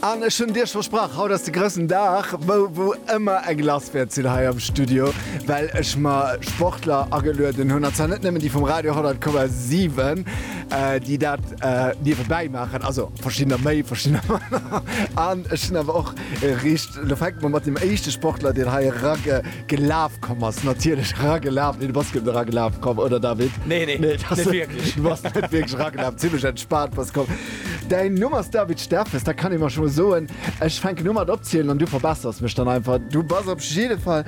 An ech hunn Iech versprach, haut ass de groussen Dag, wou wou ëmmer eng lass wäert sinn hei am Studio, well ech mer Sportler agelueden hunn, an zwar net nëmmen déi vum Radio 10,7, déi dat niewebäi maachen, also verschiddener méi, verschiddener manner, an ech hunn awer och riicht, elo fänke mer mat deem éischte Sportler, deen hei eragelaf komm ass, natierlech eragelaf, nee du bass guer net eragelaf komm, oder David? Nee, nee, net wierklech. Du bass net wierklech eragelaf. Spart bass komm. Däin Numm ass David Steffes, dat kann ee mer scho mol soen. Ech fänken u mat opzielen an du verbessers mech dann einfach. Du bass op jidde Fall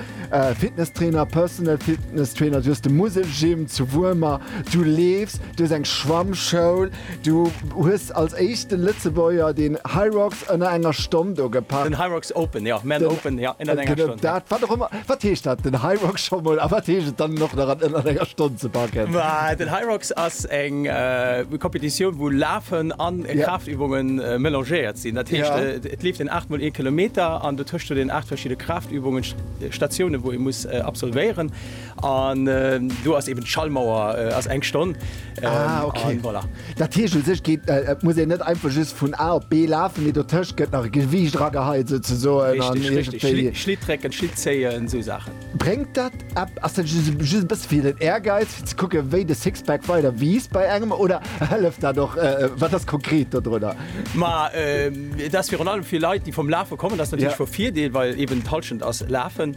Fitnesstrainer, Personal Fitness Trainer, du hues de Muselgym zu Wuermer, du leefs, du hues eng Schwammschoul, du hues als éischte Lëtzebuerger den Hyrox Ënner enger Stonn do gepack. Den Hyrox open, jo, mä en open, jo, ënnert enger Stonn. Genau dat, wat och ëmmer, wat heescht dat, den Hyrox scho mol, a wat heescht et dann en och nach an ënnert enger Stonn ze packen? Den Hyrox ass eng Kompetitioun, wou Lafen an Kraaftübungen melangéiert sinn. Dat heescht, et leeft een 8 mol ee Kilometer an dotëscht huet een 8 verschidde Kraaftübungen, Statiounen, wou ee muss absolvéieren. An do ass eben d'Schallmauer ass eng Stonn. Ah, okay. An voilà. Dat heescht u sech geet, et muss een net einfach just vun A op B lafen, mee dotëscht gëtt nach e Gewiicht erageheit souzesoen. Richtig, an richtig. iergendwéi. Schlitt, Schlitt drécken, Schlitt zéien, esou Saachen. Bréngt dat ep, ass dat just, just e bësse fir den Ehrgeiz, fir ze kucken, wéi de Sixpack weider wiisst bei engem oder hëlleft dat och, wat ass konkret dodrunner? Ma et ass virun allem fir Leit, déi vum Lafe kommen, ass natierlech vu Virdeel, well eben d'Hallschent ass Lafen.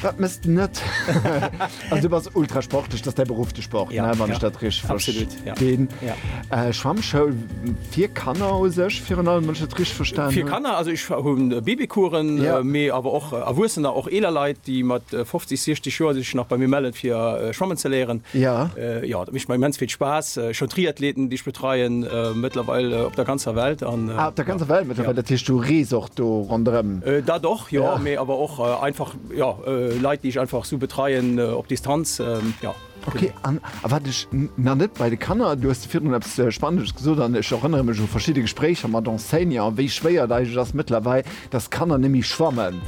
Wat mëss de net? Also du bass ultra sportlech, dat ass däi Beruff, de Sport, ne? Wann ech dat richteg verstinn. Schwammschoul fir Kanner u sech virun allem, wann ech dat richteg verstanen hunn? Fir Kanner, also ech hunn Babycoursen, mee awer och Erwuessener, och eeler Leit, déi mat 50, 60 Joer sech nach bei mir mellen, fir schwammen ze léieren. Jo, dat mécht mer immens vill Spaass. Ech hunn Triathleten, déi ech betreien, mëttlerweil op der ganzer Welt. Ah, op der ganzer Welt mëttlerweil, dat heescht du rees och do ronderëm? Dat och, jo, mee awer och einfach, jo, Leit, déi ech einfach sou betreien op Distanz, jo. Ok, an wat ech nach net bei de Kanner, du hues virdrun eppes Spannendes gesot an ech erënnere mech u verschidde Gespréicher mat Enseignanten, wéi schwéier et eigentlech ass mëttlerweil, dass d'Kanner net méi schwammen,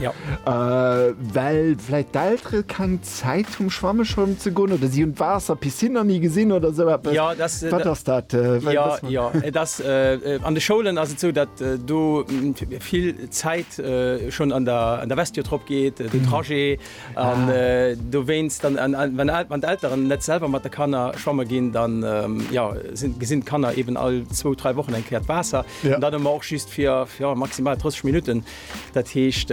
well vläicht d'Eltere keng. Zäit vum Schwammescholm ze goen oder si hunn d'Waasser, Piscine nach ni gesinn oder esou eppes? Jo, dass. Wat ass dat? Wat Jo, ass mat- jo, et ass äh, an de Schoulen ass et sou, datt äh, do mm, vill Zäit äh, schonn an der, an der Vestiaire drop geet, äh, den Trajet an äh, dowéinst dann an, an, wann, d'El- wann d'Elteren net selwer mat de Kanner schwamme ginn, dann ähm, jo, sinn, gesinn d'Kanner eben all zwou, dräi Wochen eng Kéier d'Waasser. Ja. An dann hu mer och just fir, fir, jo, maximal 30 Minutten. Dat heescht,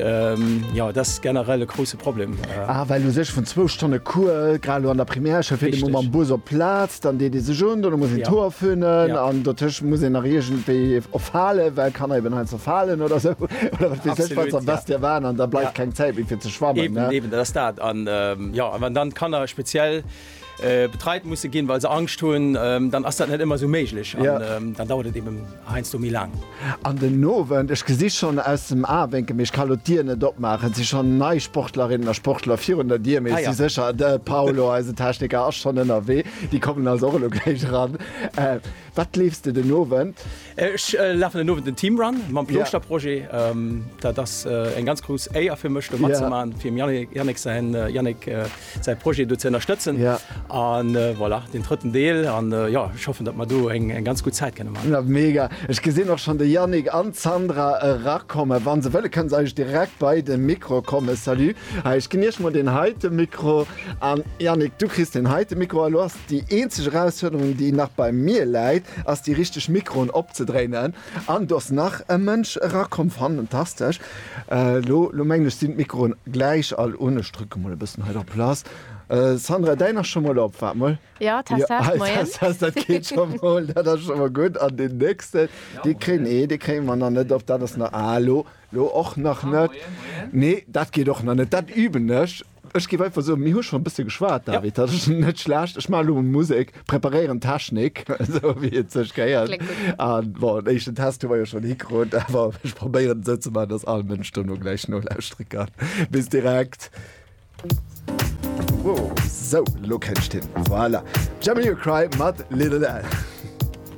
jo, dat ass generell e grousse Problem. Ah, well u sech vun zwou Stonne Cours, grad elo an der Primärschoul, fir de Mo mam Bus op d'Plaz, dann deet ee sech un, dono muss een d'Hoer fönen an dotëscht muss een nach iergendwéi och falen, well Kanner eben heiansdo falen oder sou oder wat weess ech wat, am beschte Fall, an da bleift keng Zäit méi fir ze schwammen. Eben, eben, dat ass dat. An, jo, a wann dann d'Kanner speziell. Betreit musse ginn, well se Angscht hunn, dann ass dat net ëmmer esou méiglech an dann dauert et eben heiansdo méi laang. An den Owend, ech gesi schonn aus dem Awénkel, mee ech ka elo d'Dier net opmaachen, si schonn nei Sportlerinnen a Sportler virun der Dier, mee ech si sécher, de Paolo, eisen Techniker, ass schonn ënnerwee. Déi kommen also och elo gläich eran. Wat leefs de den Owend? Ech lafen den Owend den Team Run mam Plooschterprojet. Dat ass eng ganz grouss Éier fir mech, do matzemaachen, fir dem Yannick säin Yannick. säi Projet do ze ënnerstëtzen. A voilà, deen drëtten Deel. A jo, ech hoffen, datt mer do eng ganz gutt Zäit kënne maachen. Ja, mega. Ech gesinn och schonn de Yannick an d'Sandra erakommen. Wa se wëlle kënne se eigentlech direkt bei de Mikro kommen. Salut. Hei, ech ginn iech mol deen heite Mikro. A Yannick, du kriss deen heite Mikro. Elo ass déi eenzeg Erausfuerderung, déi nach bei mir läit, ass déi richteg Mikroen opzedréinen. An do ass nach e Mënsch erakomm. Fantastesch. Lo, lo mengen ech, sinn d'Mikroen gläich all un. Ech drücke mol e bëssen hei der Place. Sandra, däin ass scho mol op. Waart mol. Jo, Test, Test, moien. Test, Test, dat geet scho mol. Dat ass scho mol gutt. An deen nächsten, dee kréien, nee, dee kréie mer nach net op. Dat ass nach, ah, lo, lo och nach net. Nee, dat geet och nach net. Dat üben ech. Ech géif einfach soen, mir hu schonn e bësse geschwat, David. Dat ass net schlecht. Ech maachen elo mol Musek, preparéieren d'Technik, esou wéi et sech gehéiert. A bon, en éischten Test hu mer jo schonn hikrut, awer ech probéieren et esou ze maachen, dass all Mënsch dono gläich nolauschtere kann. Bis direkt. Wow, esou, elo kennt een. Voilà. Jamie Cry mat Lil Al.